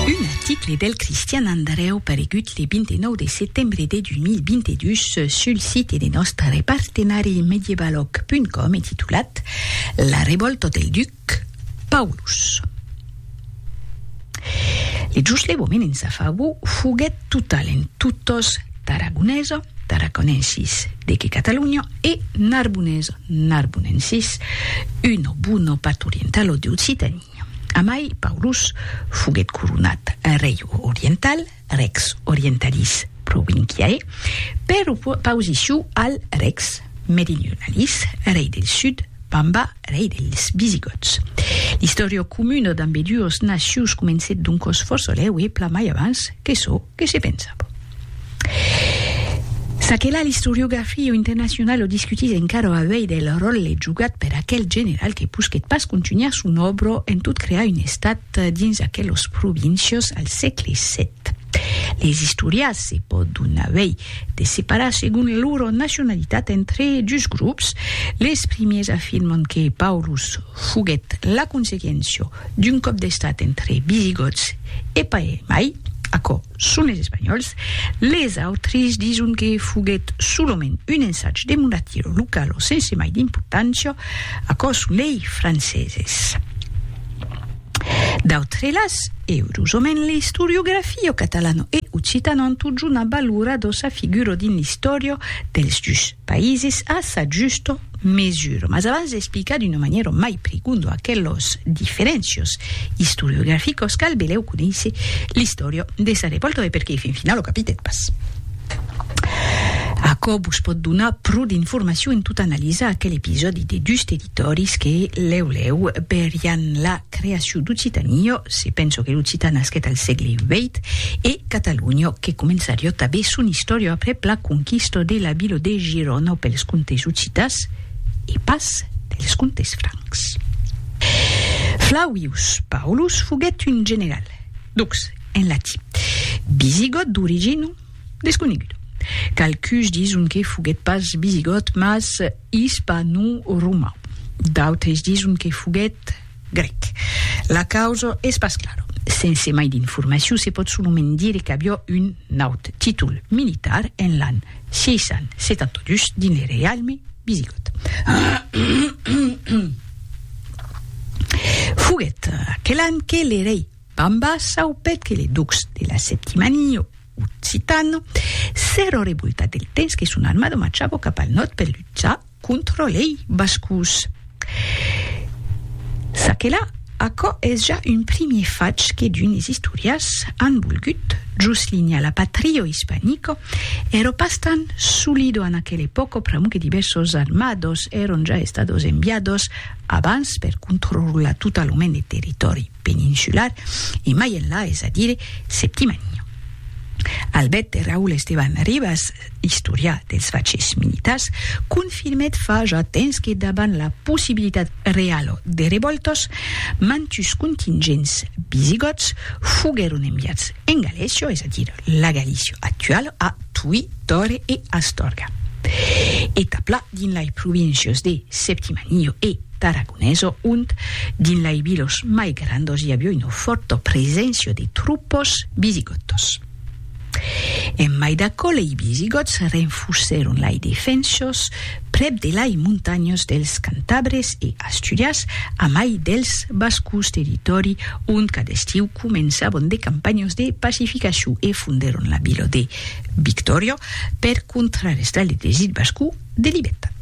Un article del Cristian Andrèu paregut le 29 de setembre de 2022 sul site de nòstre partenari Medievalòg.com e titulat La revòlta del duc Paulus. Le joslevament en sa favor foguèt total en totos Tarragonesa, Tarraconensis, de que Catalunya, e Narbonesa, Narbonensis, uno buono pat'orientalo de Occitanie. Amai Paulus foguèt coronat rei oriental, rex orientalis provinciae, per oposicion al rex meridionalis, rei del sud, Pamba, rei dels visigòts. L'istòria comuna d'ambeduos nacions comencèt doncòs fòrça lèu e plan mai avans que çò que se pensava. Ça que la l'istoriografia internacionala o discutís encara avei del ròlle jogat per aquel general que posquèt pas contunhar son òbro en tot crear un estat dins aquelos províncios al sègle vii. Les istorias se pòdon avei de separar segon lor nacionalitat entre dus grops, les primiers afirman que Paulus foguèt la consequéncia d'un còp d'estat entre Visigots e pas mai, aquò Son les espanhòls. Les autres dison que foguèt solament un ensatge de monatiro localo sense mai d'importància. Aquò son lei franceses. D'autre las, eurosament l'istoriografio catalano e occitano an totjornat valora dosa figuro dins l'istòria dels dus paises a sa justa mesure. Mas abans d'explicar d'una manièra mai prigonda aquelos diferéncios istoriograficos cal belèu conéisser l'istòria de sa revòlta de perqué fin finau lo capitèt pas. Aquò vos pòt donar pro d'informacion en tot analizar aquel episòdi de dus territòris que lèu lèu berián la Creacion d'Occitànio, se penso que l'occitan nasquèt al sègle vièit, e Catalonio, que començarió tabé son istòria aprèp la conquista de la vila de Girona pels comtes occitans, e pas pels comtes francs. Flavius Paulus foguèt un general, dux, en latin, visigòt d'origina desconeguda. Qualcuns dison que foguèt pas visigòt, mas Ispano-roman. D'autres dison que foguèt grèc. La causa es pas clara. Sense mai d'informacion se pòt solament dire qu'aviá un naut títol militar en l'an 672 dins le reialme visigòt. Foguèt aquel an que le rei Bamba saupèt que le ducs de la Septimania, Occitan. S'èra revoltat del temps que son armada marchava cap al nòrd per luchar contra lei Bascos. Ça que la, aquò es ja un primier fach que d'unes istorias an volgut joslinhar. La patria ispanica èra pas tan solida en aquela epòca pr'amor que divèrsos armados èran ja estados enviados abans per controlar totalament le territòri peninsular e mai enlà, es a dire Septimènio. Albète Raul Esteban Ribas, istorià dels fachèths militars, confirmèt fa ja tens que dabant la possibilitat realo de revòltas, mantus contingents visigòts foguèron enviats en Galècio, es a dire la Galícia actuala, a. Tui, Tore e Astorga. E taplà dins lai províncios de Septimanio e Tarragoneso, ont, dins lai vilos mai grandos, i avió una fòrta preséncia de trupos visigòtos. En mai d'aquò, lei visigòts renfusèron lai defensos prèp de lai montanhas dels Cantabres e Asturias, amai dels Bascos, territòri ont cada estiu començavan de campanhas de pacificacion e fondèron la vila de Victòria per contrarestar le desir basco de libertat.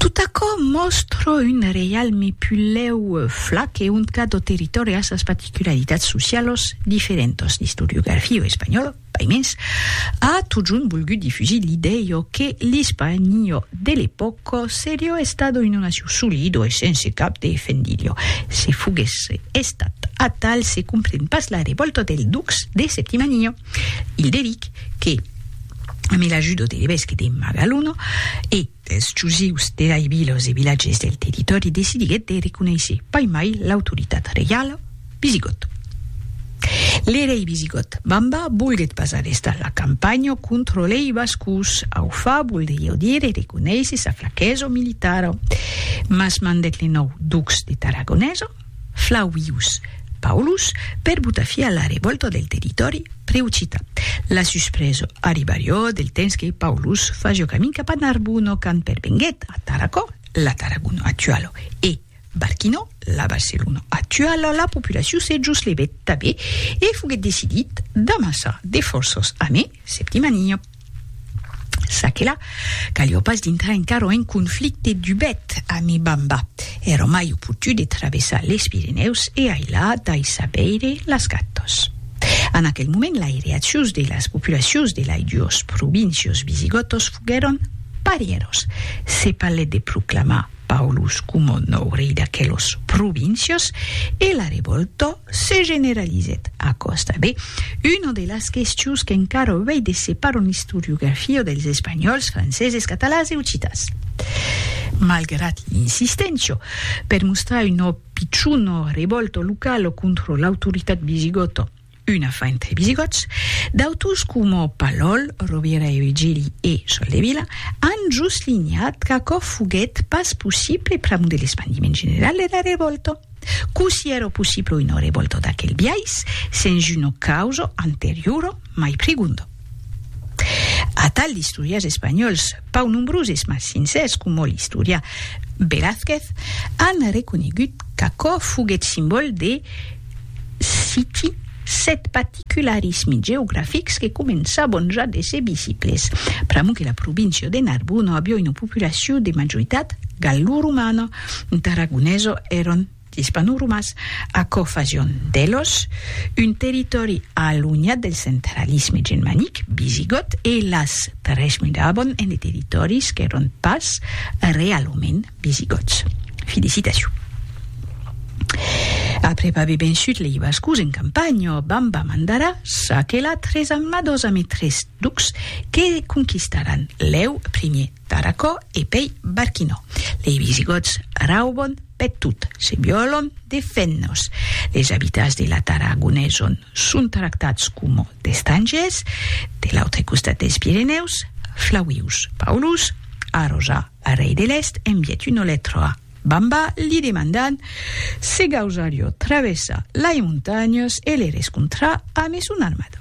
Tot aquò mòstra un reialme pulèu flac e ont cada territòri a sas particularitats socialas diferentas, l'istoriografia espanhòla, Paimens, a totjorn volgut difusir l'idèio que l'Ispanio de l'epòca serio estado una nacion solido e sense cap de fendilho. Se foguèsse estat atal se compren pas la revòlta del Dux de Septimanio Hilderic que, amb l'ajuda de l'evesque de Magaluno e Eth Jusius de lei vilas e vilatges del territòri decidiguèt de reconéisher pas mai l'autoritat reiala visigòta. Le rei visigòt Bamba volguèt pas arrestar la campanha contra lei Bascos, aufa voldrieu dire reconéisher sa flaquesa militara, mas mandèt le nòu ducs de Tarragonesa, Flavius Paulus per botar fi a la revòlta del territòri preoccità. La suspresa arribarió del temps que Paulus fasió camin cap a Narbona quand pervenguèt a Tarracò, la Tarragona actuala, e Barquinò, la Barcelona actuala, la populacion se joslevèt tanben e foguèt decidit d'amassar de fòrças amé Septimania. Ça que la, calió pas dintrar encara un conflicte dubet a mi bamba. Èra mai oportú de travessar les Pirenèus e ailà daissar veire las gatos. En aquel moment lai reaccions de las populacions de lai duos províncios visigòtos foguèron parièros. Se parlèt de proclamar. Paulus coma nòu rei d'aquelos provincios e la revòlta se generalizèt a còsta de una de las questions qu'encara avei de separar en istoriografia dels espanhòls, franceses, catalans e occitans. Malgrat l'insisténcia per mostrar una pichona revòlta locala contra l'autoritat visigòta, una fa entre visigòts, d'autors coma Palòl, Rovira e Virgili e Soldevila an soslinhat qu'aquò foguèt pas possible pr'amor de l'espandiment general dera revòlta. Cossí èra possible una revòlta d'aquel biais sens una causa anteriora mai prigonda? Atal d'istorièrs espanhòls, pau nombroses mas sincèrs coma l'istorian Velázquez, an reconegut qu'aquò foguèt simbòl de, citi, sèt particularismi geografics que començabon ja d'èsser visibles, pr'amor que la província de Narbona aviá una populacion de majoritat galloromana, d'aragonesos èran L'Ispanoromas, aquò fasion d'Elos un territòri alunhat del centralisme germanic, visigòt, e las tres mudabon en de territòris qu'èron pas realament visigòts. Fi de citacion. Aprèp aver vençut lei Bascos en campanha, Bamba mandarà s'aquelar tres amnados ame tres ducs que conquistaràn leu primier Tarracò e pei Barquinò. Lei visigòts raubon Per tot se violon defennos, les abitats de la Tara Agoneson son tractats coma d'estrangers de l'autre costat dels Pirenèus, Flavius Paulus arroja al rei de l'Èst envièt una letra a Bamba li demandant se gausarió travessar lai montanhas e le rescontrar amé son armada.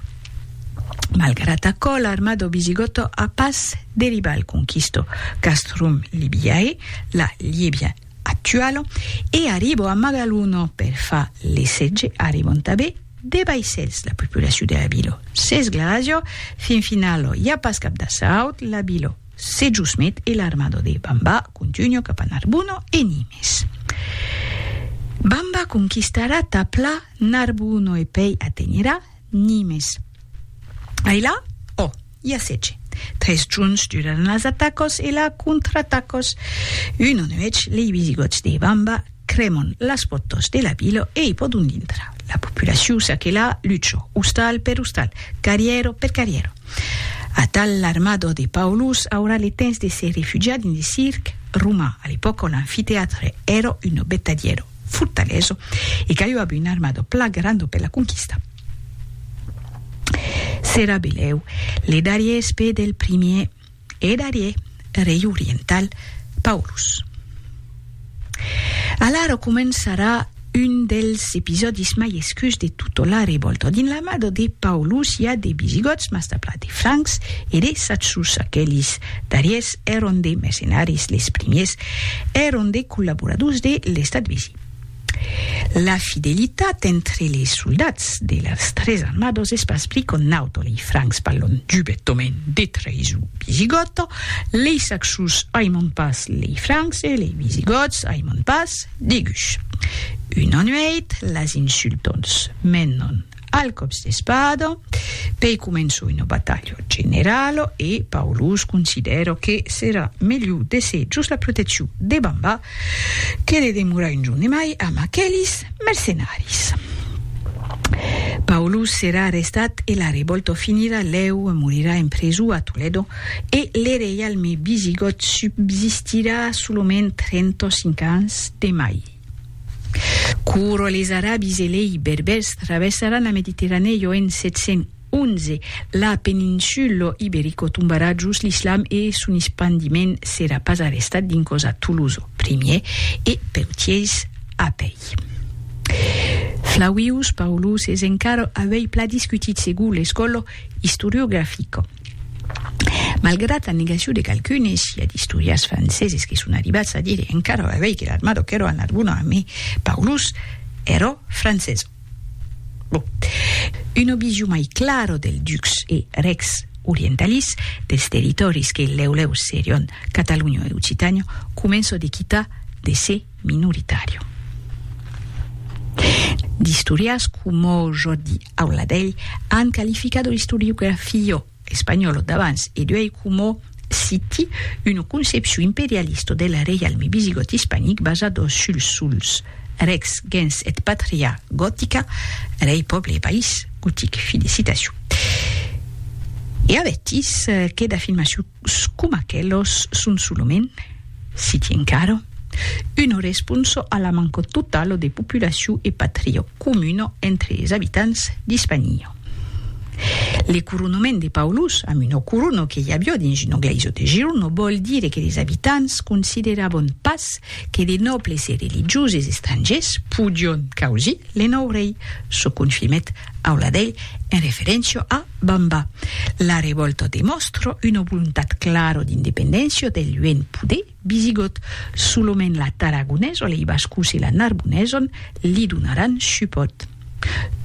Malgrat aquò, l'arma dau Visigotto a pas deribat al conquisto Castrum Libiae, la Liebia actuala, e arribò a Magaluno per far le setge, arribant tanben de vaissèls la populacion de la vila. Sens glaço, fin finala, i a pas cap d'assaut, la vila se jusmet e l'armada de Bamba contunha cap a Narbuno e Nimes. Bamba conquistarà tà pla Narbuno e pei atenherà Nimes. Ai la? Ò, i a sètge. Tres junhs durèron las atacas e la contraatacas. Una nuèch, lei visigòts de Bamba crèman las pòrtas de la vila e i pòdon dintrar. La populacion s'aquela, lucha, ostal per ostal, carrièra per carrièra. Atal l'armada de Paulus aurà le temps de se refugiar dins de circ roman, a l'epòca l'amfiteatre èra una betadièra. fortaleso e qu'aio abu un armado pla grando per la conquista. S'era beleu le darrier espè del primier e darrier rei oriental Paulus. Alara començarà un dels episòdis mai escurs de tota la revòlta. Dins l'armada de Paulus i a de visigòts, mas tabla de francs e de satsusa, aquelis D'arièrs èron de mercenaris les primiers, èron de collaboradors de l'estat vesi. La fidelitat entre les soldats de las tres armados es pas bri qu'o naut o lei francs balhon dubettomen de traïson visigòta, lei saxos aiman pas lei francs e lei visigòts aiman pas de gus. Una nuèit, las insultons menon Al còps d'espada, pei començo una batalha generala e Paulus considèra que serà melhor d'èsser jos la proteccion de Bamba que de demorar un jorn e mai amb aquelis mercenaris. Paulus serà arrestat e la revòlta finirà lèu, morirà en preso a Toledo e le reialme visigòt subsistirà solament 35 ans de mai. Quora les Arabis e lei Berbèrs traversaràn la Mediterranèo en 711, la peninsulo iberico tombarà jos l'islam e son espandiment serà pas arrestat dincòs a Toulouse au primièr e Peutièrs apèi. Flavius Paulus es encara avèi pla discutit segur l'escòlo istoriografico. Malgrat la negacion de qualqu'unes, i a d'istorians franceses que son arribats a dire encara ora avei que l'armado qu'èro a Narbona a Me Paulus èro francesa. Bon, una vision mai clara del dux e rex orientalis dels territòris que lèu-lèu serion Catalunya e Occitània comença de quitar de ser minoritària. D'istorians coma Jordi Aula d'elh an qualificado l'istoriografio espanholo d'abans e d'uei como, citi, una concepcion imperialista del reialme visigòt ispanic basado suls suls, rex, gens et patria, gotica, rei, pòble e país, gotic. Fin de citacion. E avetis, qué d'afirmacion! Coma aquelos son solament, siti encara, uno responso a la manco totalo de populacion e patrio comuno entre es abitants d'Hispania. Le coronoment de Paulus amb uno corono que i avió dins uno glaiso de Girno vòl dire que les abitants considerabon pas que de nòbles e religioses estrangers podion causir le nòu rei, çò confirmèt Aula dei, en referéncia a Bamba. La revòlta demòstra una volontat clara d'independéncia del luenh poder visigòt. Solament la Tarragonesa, lei Bascos e la Narbonesa li donaràn supòt.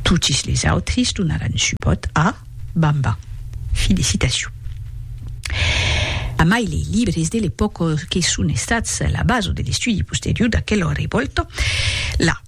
Totis les autris donaràn supòt a Bamba. Felicitacion. Amai lei libres de l'epòca que son estats la basa de l'estudi posterior d'aquela revòlta, la.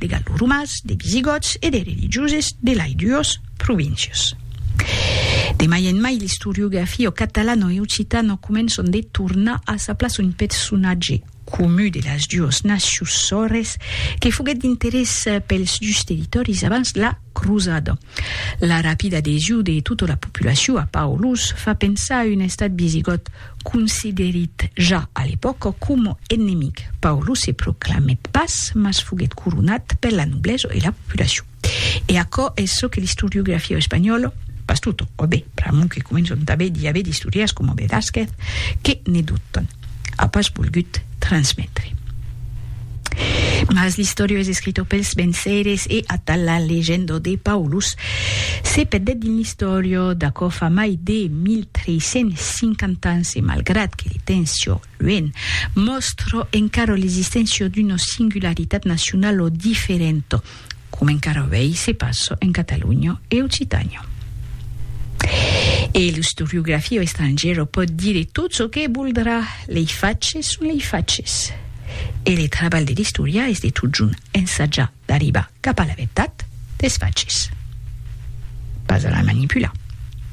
de galloromans, de visigòts e de religioses de lai duos províncios. De mai en mai l'istoriografia o catalan o occitan o començon de tornar a sa plaça un personatge comu de las duos nacius sòrres que foguèt d'interès pels dus territòris abans la crosada. La rapida adhesion de tota la populacion a Paulus fa pensar a un estat visigòt considerit ja a l'epòca coma enemic. Paulus se proclamèt pas, mas foguèt coronat per la noblesa e la populacion. E aquò es çò que l'istoriografia espanhòla, pas tota, ò ben, pr'amont que començam tanben d'i aver d'istorièrs coma Velázquez que ne dubtan. a pas volgut transmetre. Mas l'Historio es escrito pels venceres e atal la legenda de Paulus se perdèt dins l'Historio d'aquò fa mai de 1350 ans e malgrat que li tencio luènh mòstra encara l'existéncia d'una singularitat nacionala diferenta, coma encara avèi se passa en Catalonha e Occitània. E l'istoriografia estrangièra pòt dire tot çò que voldrà, lei faches son lei faches. E le trabalh de l'istorià es de totjorn ensajar d'arribar cap a la vertat des faches, pas a la manipular.